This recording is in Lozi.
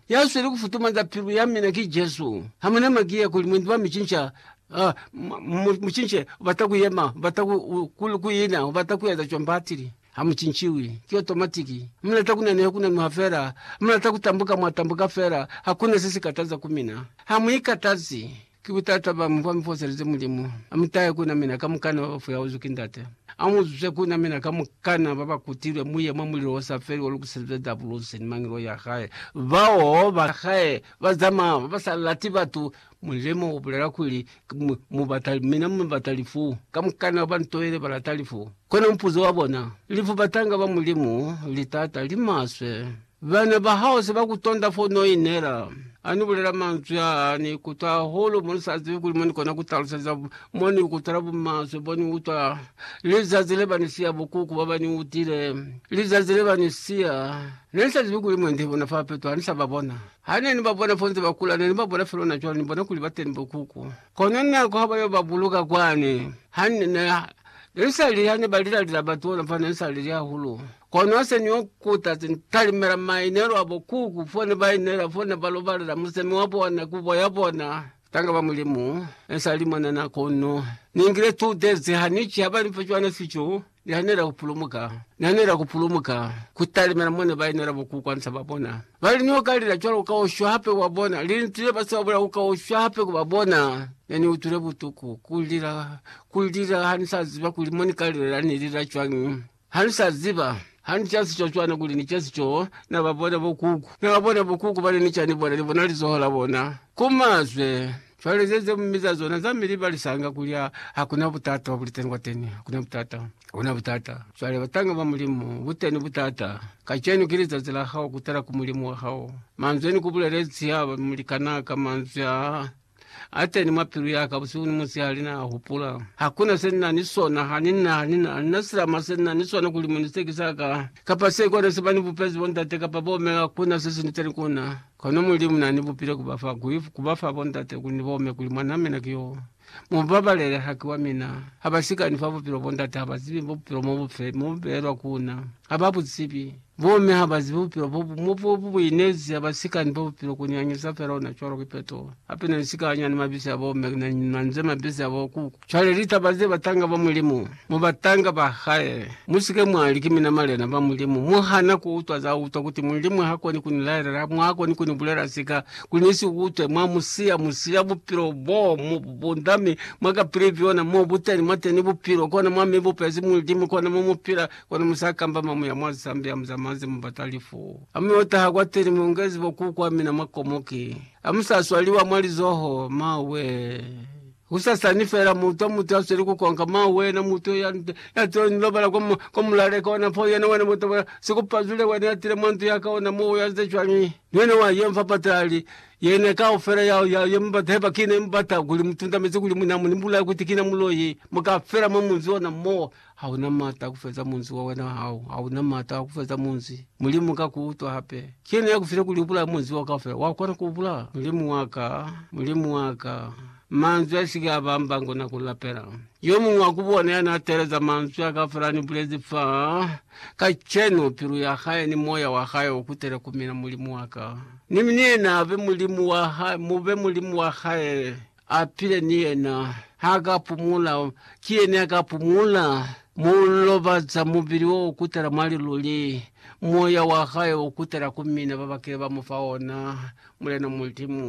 Ya sweli kufutumanza pilu ya mina ki Jesu. Ha muna maki ya kuli mwendi wa micinca, mucince, ubata kuyema, ubata kuina, ubata kueza cwani batili. Ha mucinciwi. Ki otomatiki. Mulata kunaneha kunanuha fela. Mulata kutambuka mwatambuka fela. Hakuna se si kataza ku mina. Ha mu ikatazi. Ki butata bañi bwa mi foselize Mulimu? A mu tahe ku na mina kamukana ba ba fuyauzwi ki Ndate. A mu zuse ku na mina kamukana ba ba kutilwe, mu ye mwa mulilo o sa feli o lukiselizwe Dabulusi ni mangelo ya hae. Bao ba hae ba zamaya ba ba sa lati batu, mulimo u bulela kuli, Mu bata mina, mu bata lifu. Kamukana ba ba ntoile ba lata lifu. Kono mupuzo wa bona, lifu batanga ba Mulimu li taata, li maswe. Bana ba hao se ba ku tonda fo n'o inela. Ha ni bulela manzwi aa, ni ikutwa hahulu mo ni sa zibi kuli mo ni kona ku taluseza mo ni ikutwela bumaswe bo ni utwa lizazi le ba ni siya bukuku ba ba ni utile. Lizazi le ba ni siya, ne ni sa zibi kuli mwendi bona fa peto ha ni sa ba bona. Ha ne ni ba bona fo nze ba kula, ne ni ba bona fela ona cwale, ni bona kuli ba teni bukuku. Kono nako ha ba yo ba buluka kwani, ha ni, ne, ne ni sa lili ha ne ba lila lilabati ona fa, ne ni sa lili hahulu. Kono se ni kuta se ni talimela mainelo a bo kuku fo ne ba inela, fo ne ba lobalela musemi wa bona, kubo ya bona. Tanga ba Mulimu, ne sa li mwanana kono ni ngile two days ha ni ki ha ba ni fa cwana fico. Ni hanela ku pulumuka, ni hanela ku pulumuka ku talimela mo ne ba inela bo kuku hansa ba bona. Ba li, Ni yo ka lila cwalo ka ushwa hape ku ba bona. Linzwi le ba si ba bulela ku ka ushwa hape ku ba bona. Ne ni utwile butuku, ku lila, ku lila, ha ni sa ziba kuli mo ni ka lilela ni lila cwañi. Ha ni sa ziba, ha ni ca sico cwana kuli ni ca sico, na ba bona bokuku. Na ba bona bokuku bana ni ca ni bona, ni bona lizoho la bona ku mazwe. Cwale ze ze mi za zona za mi libalisanga kuli ha, ha ku na butata bwa buliteni kwateni. Ha ku na butata. Ha ku na butata. Cwale, batanga ba Mulimu, buteni butata. Kacenu ki lizazi la hao kutala ku Mulimu wa hao. Manzwi a ni ku bulelezi haba mulikanaka, manzwi a. Ateni mwa pilu yaka busihu ni musihali na hupula. Hakuna se nina ni sona, hanina, hanina, hanina silama se nina ni sona kuli muni se ki sa ka, kapa se kona se bani bupezi bo ndate kapa bo me, hakuna se sinitani kuna. Kono Mulimu nani bupile kuba fa, kui, kuba fa bo ndate kuli ni bome kuli mwanaa mina ki yo. Mubabalele, haki wa mina. Haba sikani fa bupilo bo ndate, haba zibi bupilo mo bufe, mo bu beelwa kuna. Haba bu zibi. Bomme ha ba zibi bupilo bo bu mo bo bu buinezi ha ba si ka ni bo bupilo ku ni anyeza fela ona cwalo ki peto. Hape na ni si ka anya ni mabisi a bomme na ni manze mabisi a bo kuku. Cwale litaba ze batanga ba Mulimu mu batanga ba hae, mu si ke mwa li, Ki mina malena ba Mulimu. Mu hana ku utwa za utwa kuti Mulimu ha koni ku ni laelela, mwa koni ku ni bulela sika kuli ni si utwe. Mwa mu siya, mu siya bupilo bo mu bu bunda mi mwa ka pili byona. Mo bu teni, mwa teni bupilo, kona mwa mi bupezi Mulimu, kona mo mu pila. Kono musa kamba mamu ya mwa zisambi ya muzamazi mubata lifu. Amu yo taha kwateni muongezi bokuku wa mina mwa komoki. Amusa swaliwa mwa lizoho, ma wee. Kusasani fela muutwa mutu ya sweli kukonka, ma wena mutu ya tile ni lobala kwa mulaleka ona po yena wena bota bwa sikupazule wena ya tile mwa ntu yaka ona mo ya ze cwani. Ni wena wa ye mfa patali. Yena kaufela ya ya ye mubata heba kina ye mubata kuli mutundamezi kuli muna mu ni bulaya kuti kina muloi. Muka fela mwa munzi ona mo. Ha u na m'ata a ku feza munzi wa wena hao, ha u na m'ata a ku feza munzi. Mulimu ka ku utwa hape. Ki yena ya ku file kuli u bulaye munzi wao kaufela. Wa kona ku u bulaya? Mulimu wa ka, Mulimu wa ka, manzwi a si ke a ba mbango na ku lapela. Yo muñwi wa ku bona ya n'a teeleza manzwi a kaufela a ni bulezi fa, kacenu, pilu ya hae ni moya wa hae u kutele ku mina, Mulimu wa ka. Ni mi ni yena a be Mulimu wa hae, mu be Mulimu wa hae. A pile ni yena. Ha ka pumula. Ki yena ya ka pumula. Mu lobaza mubili wo kutala mwa liluli. Moya wa hae u kutala ku mina ba ba kile ba mu fa ona, Mulena Mulimu.